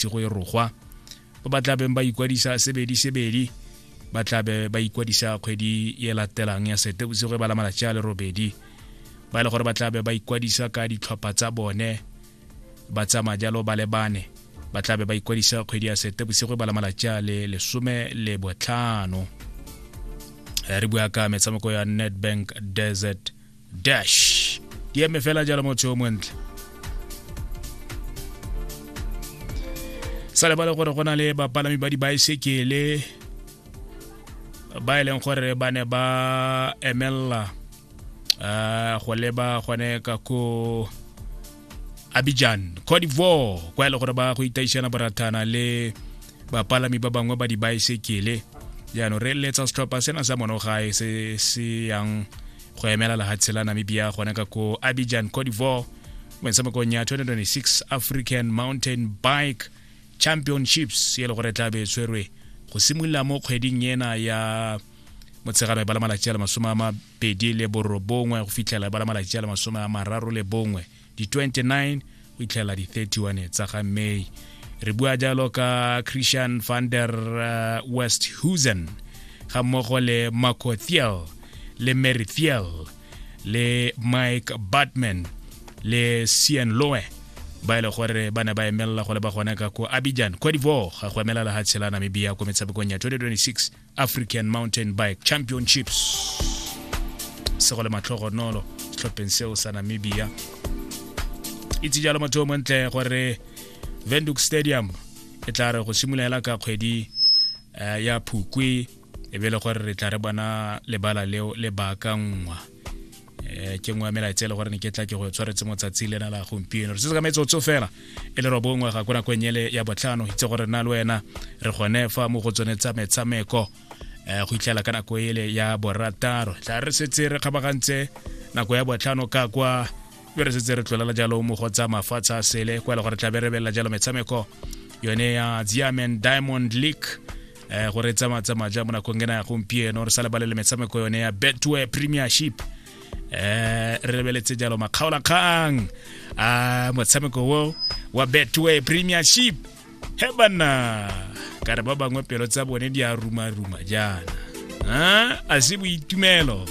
bosigo e rogwa ba ba tlabeng ba ikwadisa sebedi sebedi ba tlabe ba ikwadisa kgwedi e latelang ya sete bosigo e ba la malatsi a le robedi ba e le gore ba tlabe ba ikwadisa ka ditlhopha tsa bone ba tsamaya jalo ba lebane ba tlabe ba ikwadisa kgwedi ya sete bosigo e ba la malatsi a le lesome le botlhano re bua ka metshameko ya nedbank desert dash di eme fela jalo motho yo montle sa lebale gore go na le bapalami ba dibaesekele ba e leng gore ba ne ba emelela um go leba gone ka ko abidjan cote d'ivoire kwa e le gore ba go itaišana borathana le bapalami ba bangwe ba dibaesekele jaanong re eletsa setlhopha sena sa monogae se se yang go emela lehatshe la namibia gona ka ko abidjan cote d'ivoire mo metshamekong ya 2026 african mountain bike championships e le gore tla be e tshwerwe go simolola mo kgweding ena ya motshegano e bala malatsi a le masome a mabedi le borobongwe go fitlhela e bala malatsi a le masome a mararo le bongwe di-29 go itlhela di-31 tsa ga may re bua jalo ka christian van der uh, west husen ga mmogo le marco thiel le mary thiel le mike batman le cn loe ba e le gore ba ne ba emelela gore ba gone ka ko abidjan cote d'ivoire go emela lehatshe la namibia ko metshamekong ya 2026 african mountain bike championships se go le matlhogonolo setlhopheng seo sa namibia itse jalo motho o montle gore venduk stadium e tla re go simolola ka kgwedi eh, ya phukwe e be le gore re tla re bona lebala leo le baakanngwa eh, ke nngwe ya melaetsa e le gore ne ke tla ke go tshwaretse motsatsi lena la gompieno re se ka metsotso fela e le robongwe ga ko nako e nyele ya botlhano itse gore na le wena re gone fa mo go tsone tsa metshameko eh, go itlhela ka nako ele ya borataro tla re setse re kgabagantse nako ya botlhano ka kwa be re setse re tlolela jalo mo go tsa mafatshe a sele kwa e le gore tla be re belela jalo metshameko yone ya ziamen diamond league eh, gore tsama tsama ja mo nakong ena ya gompieno re sa lebalele metshameko yone ya betway premiership eh re lebeletse jalo makgaolakgang a motshameko wo wa betway premiership he banna ka re ba bangwe pelo tsa bone di a ruma-ruma jaana a se boitumelo